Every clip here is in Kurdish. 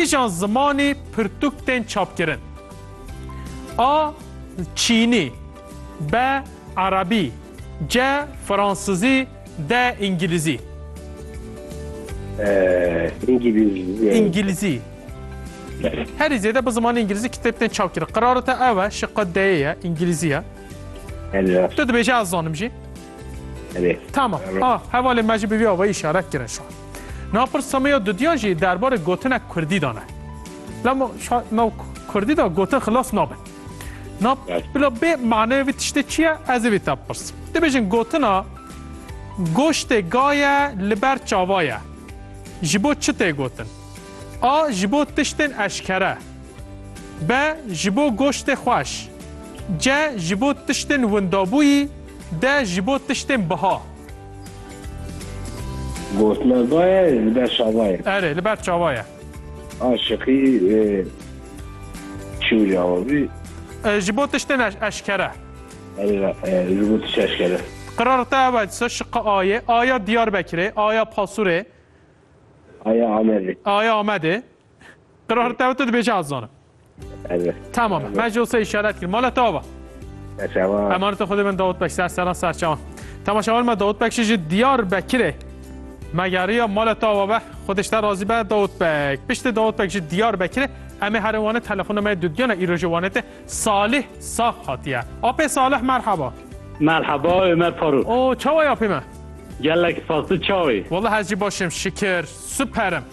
Kîjan zimanî pirtûk tên çapkirin? A. Çînî B. Erebî C. Fransizî D. Îngilîzî Îngilîzî Îngilîzî Herî zêde bi zimanê îngilîzî kitêb tên çapkirin. Qerara te ew e, şiqa D'yê ye, îngilîzî ye. Tu dibêjî ez zanim jî. Tamam. A, hevalê me jî bi vî awayî şarek kirin şa. Napir Sameya Dudyan jî derbarê gotinek kurdî dane. Lama şa nav kurdî da gotin xilas nabe. Na bila bê maneyê vî tiştê çi ye ez ê vî te bipirsim. Dibêjin gotina goştê ga ye li ber çava ye. Ji bo çi tê gotin? A. Ji bo tiştên eşkere. B. Ji bo goştê xweş. C. Ji bo tiştên windabûyî De ji bo tiştên biha. Gotina va ye li ber çava ye. Erê, li ber çava ye. Aşiqî çi wî awa bî? Ji bo tiştên eşkere. Erê, ji bo tiştên eşkere. Qirara te ev e, disa şiqe a yê. Aya Diyarbekirê, aya Pasurê. Aya Amedê. Aya Amedê. Qrar tev tu dibêje ez zanim. Evet. Tamam. Me ji olsa işaret kir. Mala tava. Serçevan. Emanet xudê min Davut Bek ser seran serçevan. Temaşavan me Davut Bek ji Diyar Bekirê. Me yariya mala tava be. Xudê te razî be Davut Bek. Piştê Davut Bek ji Diyar Bekirê. Em ê herê wane telefona me dudiyana îro ji wane te Salih Saf hatiye. Apê Salih merhaba. Merhaba Ömer Faruk. O çawa yapê me? Gelek spaslı çavi. Vallahi ez jî başim şikir. Süperim.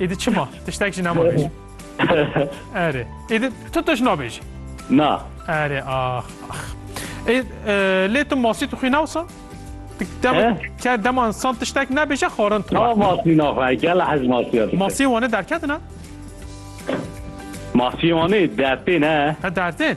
Êdî çima? Tiştek jî nema bêjim. Erê. Êdî tu tişt nabêjî. Na. Erê ax ax. Ê lê tu masî tu xwî nawsa? Dema ke dema insan tiştek nebêje xwarin tu. Na masî naxwe gel hez masî. Masî wane derketina? Masî wane dertê ne. He dertê?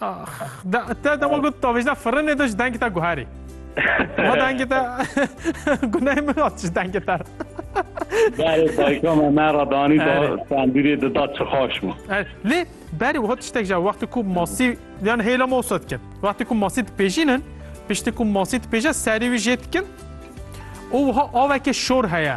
Ax, da, te dema got tavêjda firinê de ji dengê te guherî. Ma dengê te gunehê min hat ji dengê te. Berê dayika me me re danî da Erê. sendîrê di da çixaş min. Er, Lê berê wiha tiştek ja wextê ku masî yan hêla me wisa dikin. Wextê ku masî dipêjînin, piştî ku masî dipêje serî wî jê dikin û wiha aveke şor heye.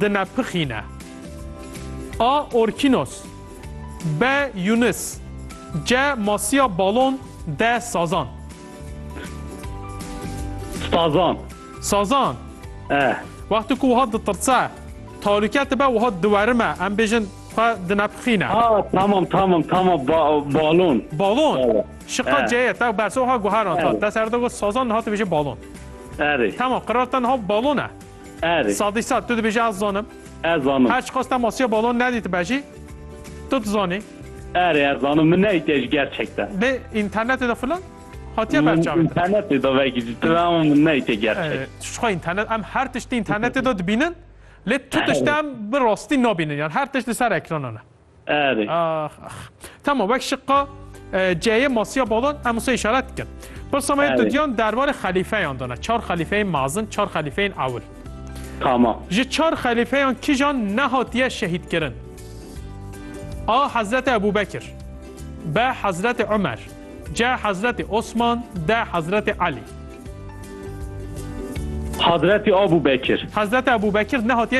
Dinepixîne. A. Orkînos B. Yûnis C. Masiya balon D. Sazan. Sazan. Sazan. Eh. Wextê ku wiha ditirtse, talûke dibe wiha diwerime. Em bêjin xwe dinepixîne. Ha tamam tamam tamam ba, balon. Balon. Balon. Şiqa Eh. C ye te berse wiha guheran. Ta Evet. te serde got sazan niha tu bêjin balon. Erê. Tamam qirarten ha balon e. Erê. Sadî sad tu dibêjî ez zanim. Ez zanim. Her çiqas te masiya balon nedîtibe jî tu dizanî. Erê ez zanim min neyîtiye ji gerçekte. Lê înternetê de filan hatiye berçavê te. Înternetê de vekî ji tira ama min neyîtiye gerçek. Tu jixwe înternet em her tiştî înternetê de dibînin lê tu tişt em bi rastî nabînin yan her tişt li ser ekranan e. Erê. Ax ax. Tamam wek şiqa ceyê masiya badan em wisa işaret dikin. Pirsa me tu diyan derbarê xelîfeyan dana. Çar xelîfeyên mezin, çar xelîfeyên ewil. Tamam. Ji çar xelîfeyan kijan nehatiye şehîd kirin? A. Hezreti Ebu Bekir B. Hezreti Ömer C. Hezreti Osman D. Hezreti Ali Hazreti Abu Bekir. Hazreti Abu Bekir ne hatiye